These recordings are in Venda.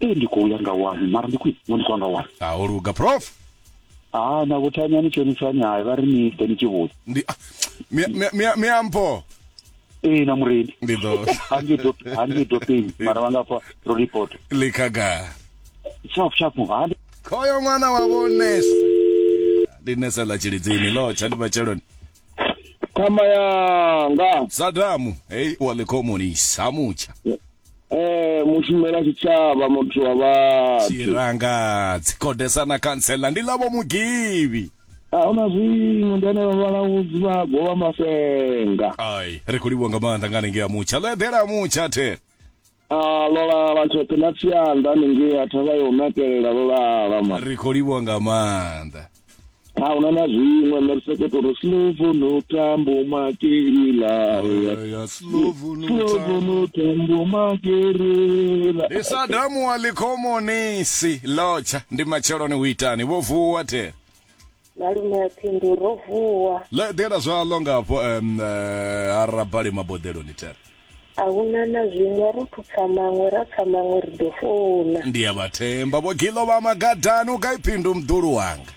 ee ndi khou ya nga wani mara ndi khwine ngo ndi khou ya nga wani ha o luga prof ha na vhuthani ani tshonisani hayi vha ri ni ḓe ni tshi vhuya ndi ah, mi- mi- mi- miampho ee na murendi ndi ḓo hange dopeni mara vha nga pfa ro report likaga shap shap ha ndi khoyo ṅwana wa vho nese ndi nese ḽa tshilidzini ḽo tsha ndi matsheloni khama yanga sadamu hei wa ḽikhomoni samutsha eh mushumela tshitshavha muthu wa vhathu tshiranga dzikodesa na khantsela ndi ḽavho mugivhi ahuna zwiṅwe ndi ane vhavhalawudzi vha govha masenga ai ri khou livhuwa nga maanḓa nga hanengei a mutsha ḽo eḓela mutsha the Ah, lola la tshoṱhe na tsianda haningei a thavha yo nakelela lolala ma ri khou livhuwa nga maanḓa a huna na zwiṅwe nṋe ri sokoto ri slovo no tambo makeila ya slovo no slovo no tambo makelela ndi sadamu wa likhomonisi lotsha ndi matsheloni hu itani vho vuwa thela Malume a pfi ndi ro vuwa. Ḽa eḓela zwaḽo nga hafho um, eh, ha rabali maboḓeloni there. A hu na na zwiṅwe ro thupfa maṅwe ra pfa maṅwe ri ḓo founa. Ndi a vha themba vho Gilo vha magadani u gai phindu mdulu wanga.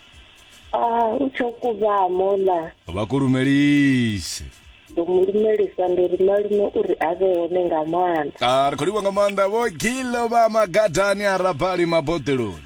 Ah, u tsho kuvhamo ḽa. Vha kulumelise. Ndo mu lumelisa ndi ri malume uri a vhe hone nga maanḓa. Ah, ri khou livha nga maanḓa vho Gilo vha magadani ha rabali maboḓeloni.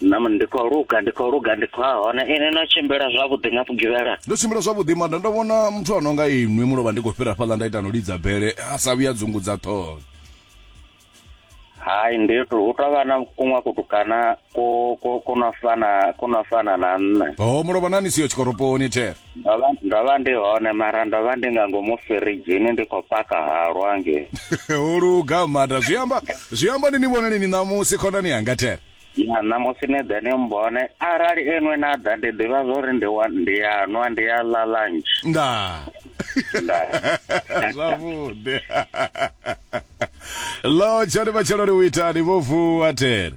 Na ndi khou luga ndi khou luga ndi khou hone ini no tshimbila zwavhuḓi nga vhugivhela ndo tshimbila zwavhuḓi mara ndo vhona muthu a no nga inwi mulovha ndi khou fhira fhaḽa nda ita no lidza bele a sa vhuya dzungudza ṱhoho hai ndi hu tou vha na kuṅwe kutukana ku ku ku no fana ku no fana na nṋe ho mulovha na ni siyo tshikoroponi there ndo vha ndo vha ndi hone mara ndo vha ndi nga ngomu firidzhini ndi khou paka halwa nge ho luga mada zwi amba zwi amba ni ni vhona nini ṋamusi khonani yanga thera ya ṋamusi ni ḓe ni mbone arali enwe na ḓa ndi ḓivha zwo ri ndi wa- ndi ya nwa ndi ya ḽa lunch ndaa zwavhuḓi lotsha ni matshelo ni u itani vho vuwa thera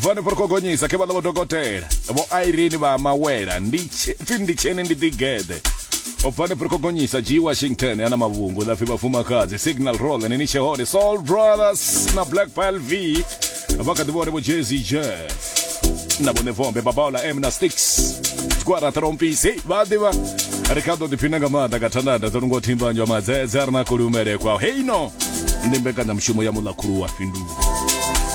bvani fori khogonyisa khe vhaḽa vho dokotela vho irene vha mawela pfi ndi tshene ndi ḓigeḓe bvani fori khogonyisa g washington ana mavhungu ḽa pfi vhafumakadzi signal roll nini tshe hone soul brothers na black pal v vha kha ḓi vhone vho jezi jeff na vhone vombe babaola m na sticks gwara trompisi vha ḓivha ri kha ḓo ḓiphina nga maanḓa nga thandanda dzo nungo thimbanjwa madzedze a ri na kuli umelekwa heino ndi mbekanyamushumo ya muḽa khulu wa fhindulo